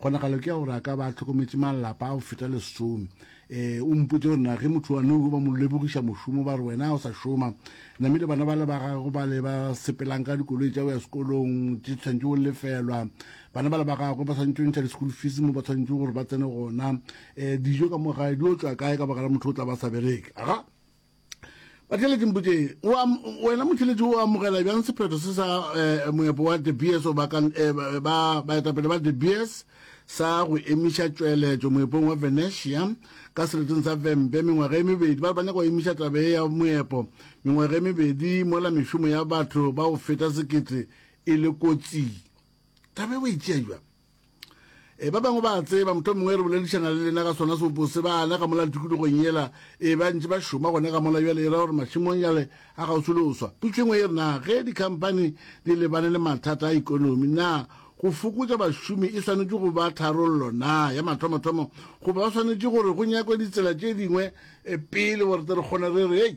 Kgonagalo ke ya gore a ka ba a hlokometše malapa a go feta lesome. E, o mpotše gore na ge motho wa nou ba mo lebogiša mošomo ba re wena o sa šoma, namile bana ba le ba gago ba le ba sepelang ka dikoloi tša go ya sekolong tše tshwanetše go lefelwa, bana ba le ba gagwe ba tshwanetše go ntšha di-school fees mo ba tshwanetše gore ba tsene gona, um dijo ka mo gae di otswa kae ka baka la motho o tla ba sa bereke? Aga! Batheletši mpotseng, wena motheletši o amogela bjang sephetho se sa eh, moepo wa De Beers o bakang eh, baetapele ba De Beers sa go emiša tšweletšo moepong wa Venetia ka sereteng sa Vembe mengwaga e mebedi. Ba re ba nyaka go emiša tabe ya moepo mengwaga e mebedi mola mešomo ya batho ba go feta sekete e le kotsing. Tabe ba itšea jwa? e ba bangwe ba tseba motho mongwe re boledišana le lena ka sona seopo se bana ka mola tikologong yela e ba ntse ba šoma gone ka mola bjale e ra gore mašemong jale a gausi le oswa putso engwe e re na ge dikhamphani di lebane le mathata a ikonomi na go fokotša bašomi e swanetše go ba tharollo na ya mathomathomo goba ba swanetše gore go nyakwe ditsela tše dingwe e pele gore tle re kgone re re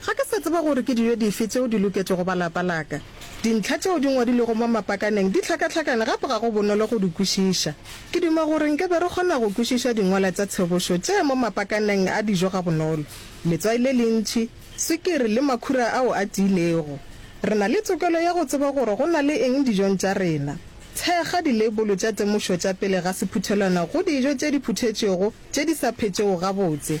Ga ke sa tseba gore ke dijo dife tšeo di loketše go ba lapa la ka. Dintlha tšeo di ngwadilwego mo mapakaneng di hlakahlakane gape ga go bonolo go di kwešiša. Ke duma gore nke be re kgona go kwešiša dingwala tša tshebošo tše mo mapakaneng a dijo gabonolo, letswai le lentši, swikiri le makhura ao a tiilego. Re na le tokelo ya go tseba gore go na le eng dijong tša rena. Thekga dileibolo tša temošo tša pele ga sephuthelwana go dijo tše di phuthetšwego tše di sa phetšego gabotse.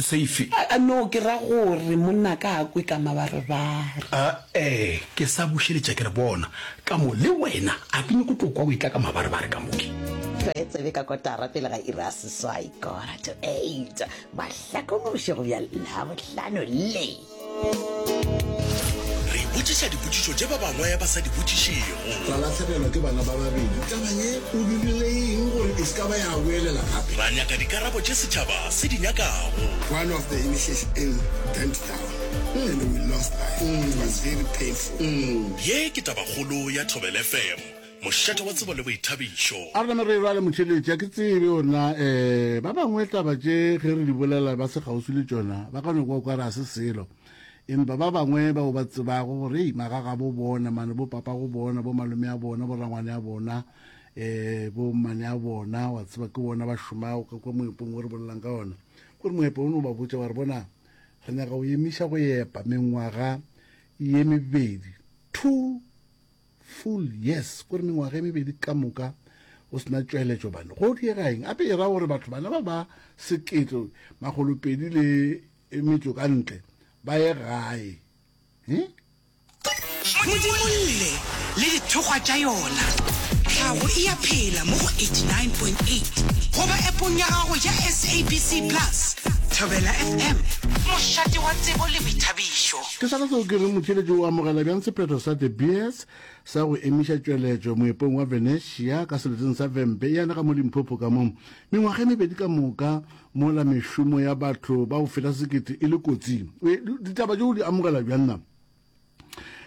Seifi. No, ke ra gore monnaka a kwe ka mabarebare. A-ee, ke sa bušeletša ke re, bona, ka mo, le wena, a ke nyoko tlo kwa o etla ka mabarebare ka mo. Re tsebe ka kotara pele ga iri ya seswai, kora to eight, mahlakonoše go bja Labohlano le. Re ipotšiša dipotšišo tše ba bangwe ba sa di botšišego. Ra lahlegelwa ke bana ba babedi. Taba ye o dirile eng gore e se ka ba ya boelela gape? Ra nyaka dikarabo tše setšhaba se di nyakago. One of the initiation burned down and we lost life. It was very painful. Ye ke tabakgolo ya Thobel FM. Mošate wa tsebo le boithabišo. A re name re e rwale motšheletši, a ke tsebe gore na um ba bangwe taba tše ge re di bolela ba se kgauswi le tšona ba ka no kwa o ka re ga se selo. Empa ba bangwe bao ba tsebago gore hei magagabo bona mane, bopapabo bona, bomalome a bona, borangwane a bona, um bommane a bona, wa tseba ke bona ba šomago, o ka kwa moepong o re bolelang ka ona gore moepo o no ba botša wa re bona re nyaka go emiša go epa mengwaga ye mebedi two Full yes ko re mengwaga e mebedi ka moka go sena tšweletšo bane go diega eng gape e ra gore batho bana ba ba sekete magolopedi le metso ka ntle ba ye gae eh? modimo lle le dithokgwa tša yona tlhago e ya phela mo go 89.8 goba epong ya gago ya sabc plus thobela fm mošate wa tsebo le boithabišo Ke sona seo ke reng motheeletši o amogela bjang sephetho sa De Beers sa go emiša tšweletšo moepong wa Venetia ka seleteng sa Vhembe ya lega mo Limpopo ka mo mengwaga e mebedi ka moka mola mešomo ya batho ba go feta sekete e le kotsing. E, ditaba tšeo di amogela bjang na?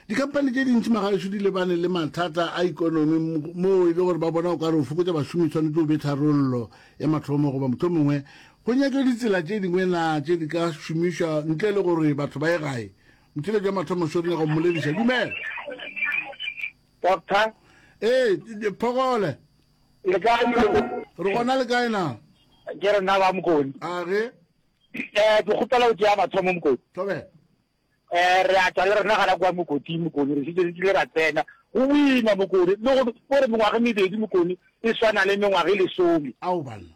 Dikampane tše dintši magaešo di lebane le mathata a ikonomi moo e le gore ba bona o ka re o fokotša bašomi tshwanetse o be tharollo ya mathomo goba mohlomongwe Go nyak'o ditsela tše dingwe na tše di ka šomišwa ntle le gore batho ba ye gae? Motšheletši wa mathomo swo nyaka go mmolediša. Dumela. Doctor. Ee, Phogole. Le kae mo? Re gona le kae na? Ke re na ba Mokoni. A ge? Eh, ke kgopela go tšea mathomo Mokoni. Thobe. Eh, re a tšwa le rena gana kwa Mokoti Mokoni, re šitše re tlile ra tsena. Go boima Mokoni, le go gore mengwaga mebedi Mokoni e swana le mengwaga e lesome. Ao banna.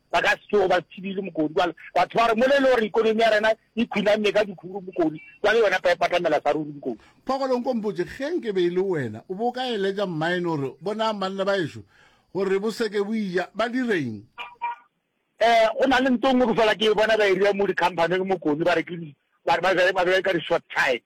Ba ka se tsoge ba thibile mokodi kwale. Batho ba re mo le le gore ikonomi ya rena e khunanne ka dikhuru mokodi kwale yona pa e patamela sa ruri mokodi. Phokolo nko mpotše ge nke be e le wena o bo ka eletša mmaene gore bonang banna ba ešo gore bo seke bo ija ba direng? Eh go na le ntho nngwe ke fola ke e bona ba e ria mo di company-eng mokodi ba re ke ba be ka di short time.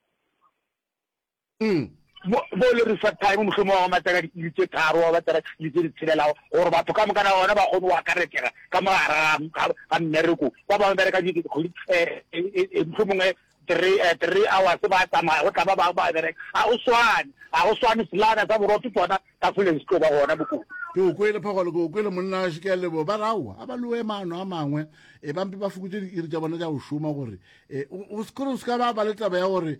Umm, mo, mo le re fa time, mohlomong wa go matsaka di-iri tše tharo, wa matsaka di-iri tše di tshelelago, gore batho ka moka na bona ba kgone go akaretšega ka mo gare ga, ga, ga mmereko. Ba bangwe bereka di, kgwedi, eh, eh, eh, eh, mohlomong eh, three, eh, three hours ba tsamaya, go tla ba bangwe ba bereka. Ga go swane, ga go swane, selana sa borotho tsona ka fole se tlo ba gona bokone. ke o kwele phogolo ke o kwele monna gašo ke a lebo ba raowa a ba loe maano a mangwe e bampe ba fokotse diiri tša bona tša go šoma gore e, o o se kore o se ka ba ba le taba ya gore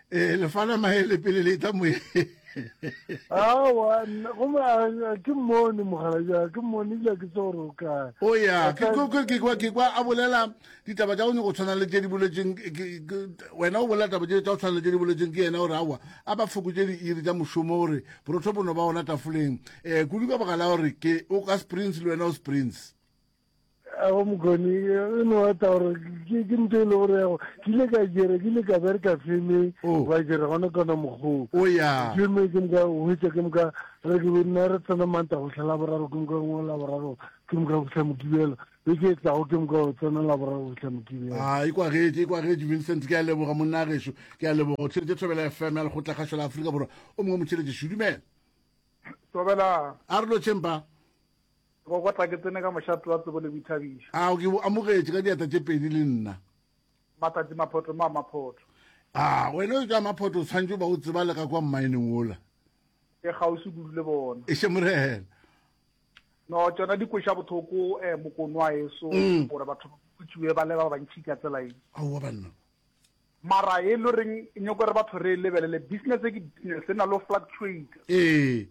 eh lefala mahele pele le tla moye awa goma ke mmone mogala ja ke mmone ja ke tse gore o kae o ya ke kwa ke kwa a bolela ditaba tša one go tshwana le tše di boletseng wena o bolela taba tša go tshwana le tše di boletseng ke yena gore awa a ba fokotse diiri tša mošomo gore borotho bono ba ona tafoleng um kudu ka baka la gore ke o ka springs le wena o springs a go mokgone e no ata gore ke ke nto e le gore yago ke ile ka jere ke ile ka bereka feme oh. ba jere gona kona mokgoo oh, feme ke moka hwetsa ke moka re ke nna re tsena manta go tlhela boraro ke moka ngwe la boraro ke moka go tlha mokibelo e ke e tlago ke moka go tsena la boraro go tlha mokibelo a e kwagetse e kwagetse vincent ke a leboga monna a gešo ke a leboga o tšheletse thobela fm ya lekgotla kgašo la aforika borwa o mongwe motšheletse šudumela tobela a re lo tšhempa Go kwa tla ke tsene ka mošate wa tsebo le boithabišo. Ao ke bo amogetše ka diatla tše pedi le nna. Matšatši maphoto mma Maphoto. A wena yo tša Maphoto o tshwanetše go ba o tseba le ka kwa mmaeneng wola. Ke kgauswi kudu le bona. Eše Morena. No tšona di kweša bothoko eh Mokonwaeso gore batho ba khutšiwe ba le ba bantšhi ka tsela ye. Aowa banna. Mara e lo reng e nyoko re batho re lebelele business e ke business e na lo fluctuate. Ee.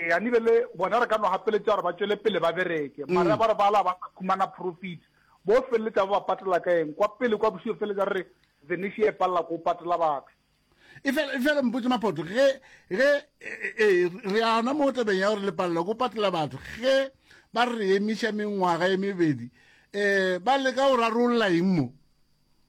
Ee a nibele bona re ka no hapeletša gore ba tšwele pele ba bereke mara mm. ba re bala ba sa khumana profit bo feleletša ba ba patela ka eng kwa pele kwa bosio feleletša re re Venice e palela ko patela batho e fela e fela mpotse mapoto ge ge e, e, e, re ana mo tabeng ya gore le palela ko patela batho ge ba re emiša mengwaga e mebedi eh ba leka go rarolola eng mo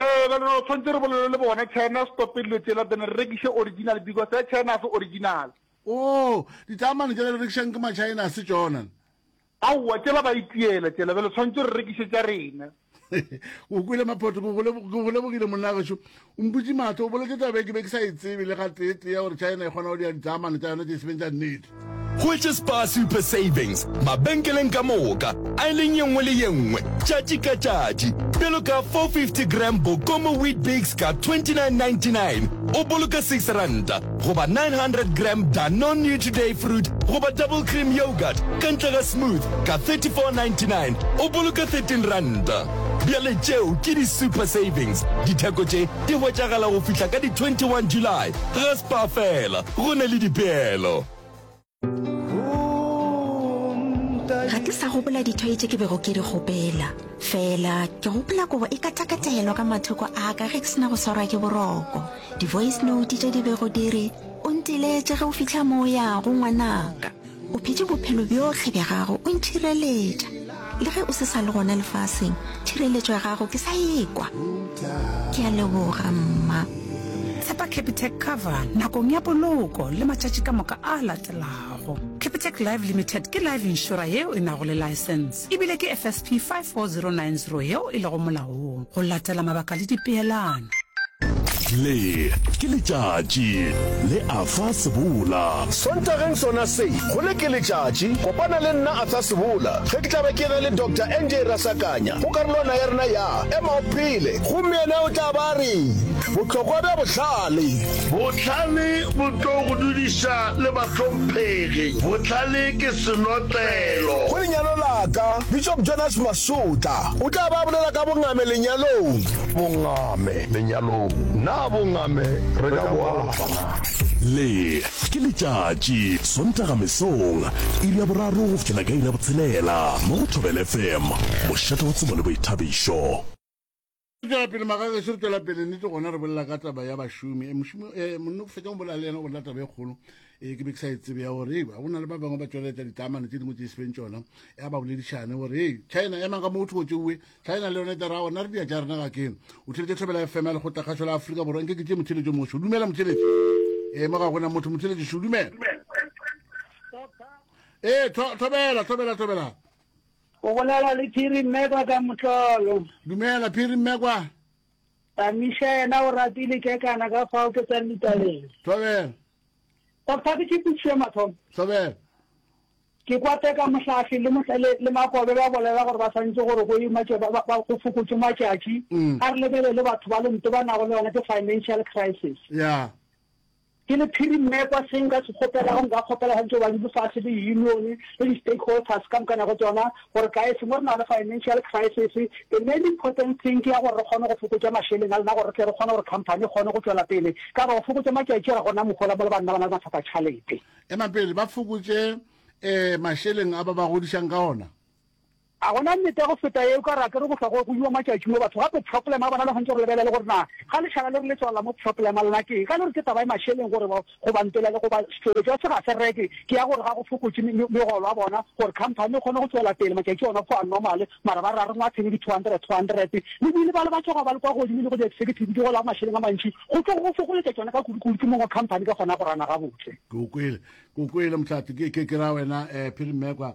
Ee, bjale re tshwanetse re bolele le bona, China, stope dilo tšela, then re rekiše original, because ya China a se original. Oo, ditaamane tšela di rekišang ke ma-China, a se tšona? Aowa, tšela ba itiela tšela, bjale tshwanetse re rekiše tša rena. O kwele Maphoto, ke go lebogile monnagešu. O mputše matho, o boletše taba e ke be ke sa e tsebe le ga tee tee ya gore China e kgona go dira ditaamane tša yona tše e sebeng tša nnete. Hwetše Spar Super Savings mabenkeleng ka moka, aeleng ye nngwe le ye nngwe, tšatši ka tšatši. Bjalo ka 450 gram Bokomo Weet-Bix ka 29.99, o boloka six ranta, goba 900 gram Danone Nutriday Fruit goba Double Cream Yoghurt ka ntle ga Smooth ka 34.99, o boloka thirteen ranta. Bjale tšeo ke di super savings. Ditheko tše di hwetšagala go fihla ka di 21 July. Ga Spar fela, go na le dipeelo. Ga ke sa gopola dithoi tše ke bego ke di kgopela. Fela ke gopola kobo e katakatelo ka mathoko a ka ge ke sena go swarwa ke boroko. Di-voice note tše di bego di re, O ntiletše ge o fihla mo o yago, ngwanaka. O phetše bophelo bjohle bja gago o nthireletša. Le ge o se sa le gona lefaseng, thireletšo ya gago ke sa ekwa. Ke a leboga, Mma. Tshepa Capitec Cover nakong ya poloko le matšatši ka moka a latelago. Capitec Life Limited ke life insurer yeo e nago le license. e bile ke FSP 54090 yeo e lego molaong go latela mabaka le dipeelano. Le ke letšatši le a fa sebola. Sontageng sona se, go le ke letšatši, kopana le nna a fa sebola ge ke tla be ke na le Doctor NJ Rasakanya go karolwana ya rena ya Ema o Phele. Gomme yena o tla ba a re, Bohlokwa bja Bohlale. Bohlale bo tlo go dudiša le bahlomphegi. Bohlale ke senotlelo. Go lenyalo la ka, Bishop Jonas Masotla o tla ba a bolela ka bongame lenyalong. Bongame lenyalong, na bongame re ka bo alafa na? Le, ke letšatši, Sontaga mesong, iri ya boraro go fihlela ka iri ya botshelela, mo go Thobela FM, mošate wa tsebo le boithabišo. Re tšwela pele magagešo, re tšwela pele nnete gona re bolela ka taba ya bašomi. Eh, mošomi eh, monna fetsa go bolela le yena go bolela taba e kgolo eh, ke be ke sa e tsebe ya gore ga go na le ba bangwe ba tšweletša ditlamane tse dingwe tse sepeng tšona ya ba boledišane gore e china emang ka mo o thogo tšeuwe china le yone tera gona re dia tša rena ga keng o theletše tlhobela fm ya lekgotla kgašo la aforika borwa nke ke tše motheletšo mošo dumela motheletši e eh, mo ga gona motho motheletši šo dumela ee eh, thobela thobela thobela O bolela le Phiri Mmekwa ka motlolo. Dumela, Phiri Mmekwa. Tamiša yena o rapile kekana ka fao ke tsang ditabeng. Thobela. Doctor, ke tšepišo ya mathomo. Thobela. Ke kwa teka mohlafi le motlele le makobe ba bolela gore ba swantse gore go imatše ba ba go fokotše matšatši mm. a re lebelele batho ba lento ba nago le yona ke financial crisis. Yeah. Ke le phirimekwa se nka se kgopelago, nka kgopela gantši go ba di lefase le union le di stakeholters ka mokana go tšona gore guys mo re na le financial crisis the main important thing ke ya gore re kgone go fokotša mašeleng a lena gore re tle re kgone gore company e kgone go tšwela pele ka gore go fokotša matšatši ga gona mohola mo le banna ba na le mathata tšhalete. Ema pele ba fokotše eh mašeleng a ba ba godišang ka ona. A go na nnete ya go feta ye o ka re a ke re go hlwa go goiwa matšatši mo batho gape pšhoplema a bona le gantši go lebelela le gore na ga lešala le re le tswalela mo pšhoplema lena ke eng? Ga le re ke taba e mašeleng gore ba go ba ntolele go ba sefebe jwa se ga se reke ke ya gore ga go fokotše megolo a bona gore khamphani e kgone go tšwela pele matšatši ona go a normale mara ba re a re ngwathe le di 200 200 le bile ba le ba tšhoga ba le kwa godimo le go di executive di gola mašeleng a mantši go tlo go fokoletša tšona ka kudu kudu ke mongwe khamphani ka gona go rana gabotse. Ke go kwele ke go kwele motlhati ke ke ke ra wena eh phiri mmekwa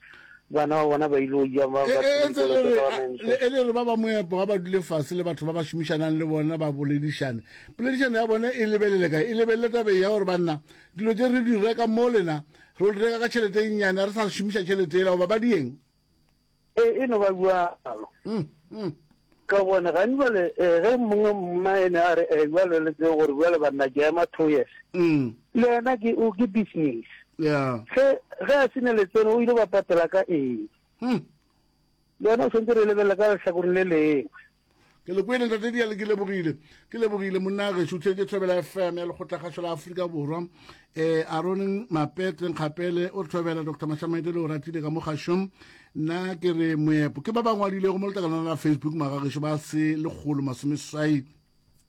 Bana ba bona ba il'o ja ba ba e ntse le re le e le re ba ba moepo ga ba dule fase le batho ba ba šomišanang le bona ba boledišane poledišano ya bona e lebelele ka e lebelele tabe ya gore banna dilo tse re di reka mo lena re reka ka tšhelete e nnyane re sa šomiša tšhelete ela goba ba dieng e e no ba bua alo mm, mm. Ka gobane gane bjale ge mongwe mmaene a re, Ewa lo le tsebe gore bjale banna ke ema two years, le yena ke o ke business. Ge ge a se ne letseno o ile ba patela ka eng? Le yona o tshwanetse re lebelele ka lehlakoreng le lengwe. Ke le kwele ntate Diale, ke lebogile. Ke lebogile monna gešo. O theetše Thobela FM ya Lekgotlakgašo la Afrika Borwa e arone mapetle nkgapele o re thobela dr mashamaite le o ratile ka mo gašong nna ke re moepo ke ba ba ngwadilego mo letakalana la facebook magagešo ba se lekgolo masomeswai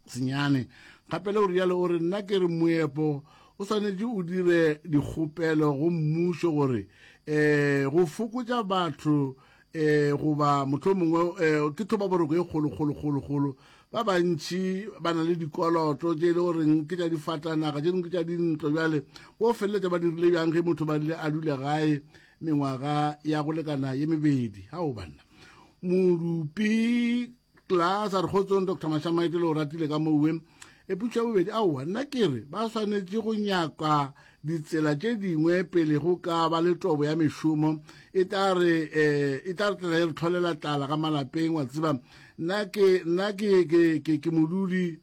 senyane kgapele o rialo o re nna ke re moepo o swanetše o dire dikgopelo go mmušo gore um go fokotša batho um goba mohlomongwe um ke thobaboroko e kgolokgolokgolokgolo ba bantši ba na le dikoloto tše e le goreng ke tša difatanaga tše dingwe ke tša dintlo bjale bo feleletša ba dirile bjang ge motho ba rile a dule gae mengwaga ya go lekana ye mebedi ga o banna modupi Class a re kgotsong Dr. Mashamaite le o ratile ka mo uwe. E putšo ya bobedi aowa nna ke re ba swanetše go nyaka ditsela tše dingwe pele go ka ba le tobo ya mešomo e tla re eh, e tla re tlela e re tlholela tlala ka malapeng wa tseba nna ke nna ke ke ke, ke modudi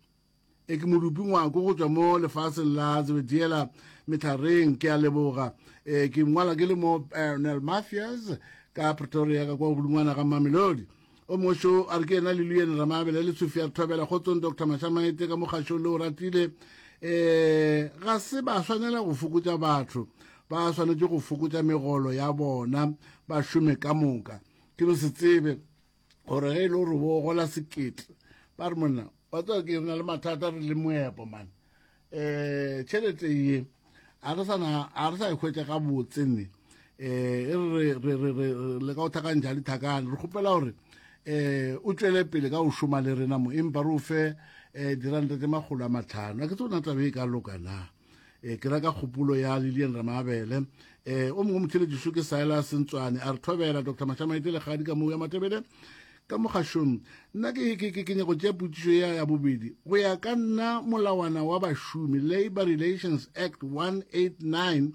E ke modupi ngwako go tšwa mo lefaseng la Zebediela Methareng, ke a leboga. E ke ngwala ke le mo Parnell Mafias ka Pretoria ka kwa godingwana ga Mamelodi. O mošo a re ke yena le Luyene Ramabele le Sofia Rthobela kgotsong Dr Mashamaete ka mokgašong le o ratile. E ga se ba swanela go fokotša batho, ba swanetše go fokotša megolo ya bona ba šome ka moka. Ke no se tsebe gore ge e le gore bo gola sekete ba re monna wa tswa ke na le mathata re le moepo mane um eh, tšhelete ye a re sana a re sa ikhwetsa ka botse ne eh e re re re re le ka o thakang jali thakang re khopela hore eh o tswele pele ka o shoma le rena mo empa re o fe eh diranta tse magolo a matlhano a ke tsona tla be e ka loka na e ke reka kgopolo ya lilian ramabele um e, o mongwe motheletšiso ke saela sentswane a re thobela dr mashamaete legadi ka moo ya matebele ka mogašong nna ke nyako tšea potsišo ya ya bobedi go ya ka nna molawana wa bašomi labor relations act 189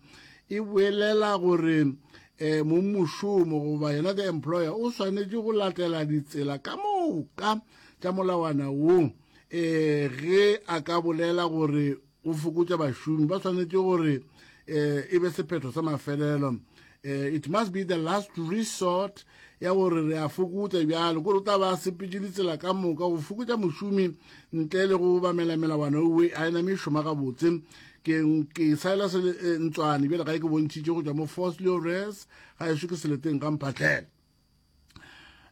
e boelela gore um e, mommošomo goba yena the employer o swanetše go latela ditsela ka moka tša molawana wo um ge a ka bolela gore go fokotša bašomi ba swanetše gore eh, e be sephetho sa mafelelo eh, it must be the last resort ya gore re a fokotša bjalo kore o tla ba sepetše ditsela ka moka go fokotša mošomi ntle le go bamela melawana owe a ena mešoma gabotse ke saela se eh, ntswane bjale ga e ke bontšhitše go tšwa mo force leores ga e šo ke seleteng ga mphatlhela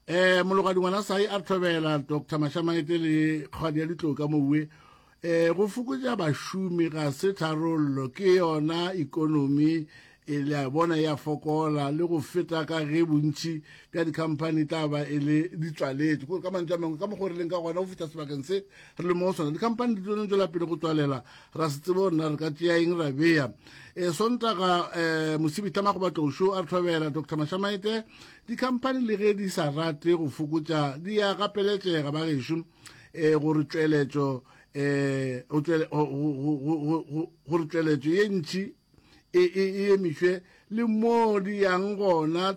eh mologadi ngwana sai a tlhobela dr mashamaete le kgadi ya ditlo ka mowe eh go fokotša bašomi ga se tharollo ke yona ikonomi e le a bona ya fokola le go feta ka ge bontši bja dikhamphani tla ba e le ditswaletse kore ka mantswe a mangwe ka mokgwa re leng ka gona go fihla sebakeng se re le mo go sona dikhamphani di tsone tswela pele go tswalela ra se tsebo rena re ka tšeya eng ra beya e sontaga um mosibitama go batlošo a re thobela dr mashamaete dikhamphani le ge di sa rate go fokotša di ya gapeletšega ba gešo um gore tšweletšo um gore tšweletšo ye ntši e emišwe le mo di yang gona